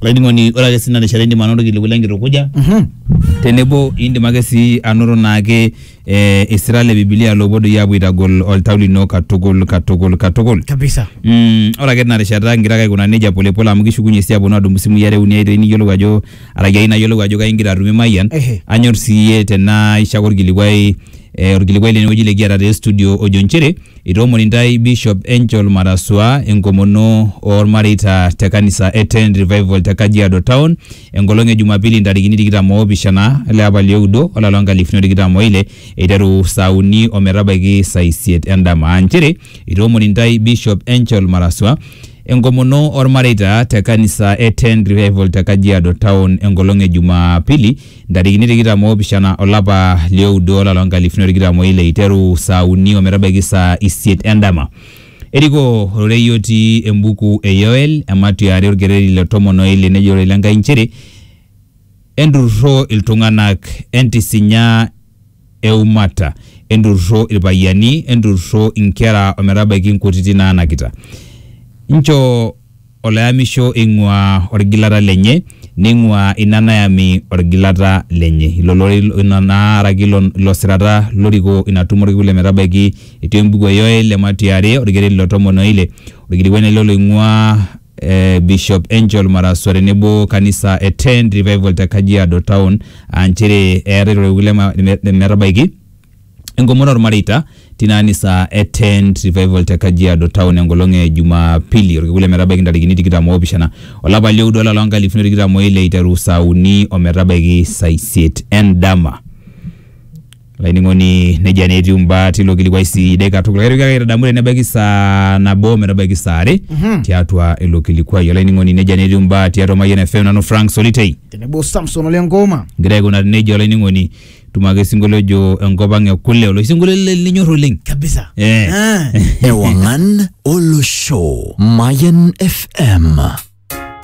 Olainining'oni, ore ake sii tina rishata indim anoto ilkiliku le nkitukuja Mhm. tenebo indim ake sii anoto naake eh, isira le Biblia loopuo doi aapuo aitagol oltau lino katukul katukul katukul. Kabisa. Mm, ore ake tina rishata ingira ake aikunaa nejia pole pole amu kishukunye sii aaponu aadumu isimui are uni aitoi niyiolou ajo araki ayieu nayiolou ajo kai igira atumie Mayian. Ehe. Anyor sii iyie tenaa ishoo ake olkilikuai eh, olkilikuai lene wueji likiata te studio ojo nchere Itoomoni intae Bishop Angel Marasua enkomono oolmareita te kanisa e Ten Revival te Kajiado Town enkolong e Jumapili ntarikini tikitam oopishana ele apa li oudo olari loo nkalifuni o tikitam o ile eiteru saa uni o metabaiki saa isiet endama aa nchere itoomoni intae Bishop Angel Marasua enkomono oolmareita te kanisa e Ten Revival te Kajiado Town enkolong e Jumapili Ntarikini tikitam oopishana o lapa li oudo o lari loo nkalifuni o tikitam o ile eiteru saa uni o metabaiki saa isiet e ndama. Erikoo ororei otii embuku e Yoel, ematua e are olkereri le tomon o ile nejo ororei le Nkai nchere, Enturrurro iltung'ana, entisinya, e umata, enturrurro ilpayiani, enturrurro inkera o metabaiki nkutiti naanakita. Nchoo oloyamisho eing'uaa olgilata lenye, neing'uaa ina nayami olgilata lenye. Ilo lorei ina naa araki ilo ilo sirata lorikoo ina tumo olkekun le metabaiki etii embuku e Yoel, Ematia are, olkereri le tomon o ile, olkilikuai naa ilo loing'uaa eh, Bishop Angel Maraswa tenebo kanisa e Tent Revival te Kajiado Town aa nchere eetae lorewuki lema- leme- lemetabaiki enkomono ormareita tina anisa e Tent Revival te Kajiado Town enkolong e Jumapili orkekun lemetabaiki ntarikini tikitam oopishana olapa lioudo olapa loonkalifuni tikitam oile iteru saa uni ometabaiki saa isiet endama. Laining'oni nejia naa etiu imbaa tilo kilikuai sidai katukul. Kaitoki ake aitadamu tenebaiki saa nabo metabaiki saa are Mhm. tiatua ilo kilikuai. Olainining'oni nejia naa etiu imbaa tiatua Mayian FM nanu Frank Solitei. Tenebo Samson ole Ngoma. Igira aikunari nejia olainining'oni tumo ake sinkolio ojo enkop ang e kule oloshi sinkolio li- linyor oleng. Kabisa. Eh. Ah. Ewangan Olosho Mayan FM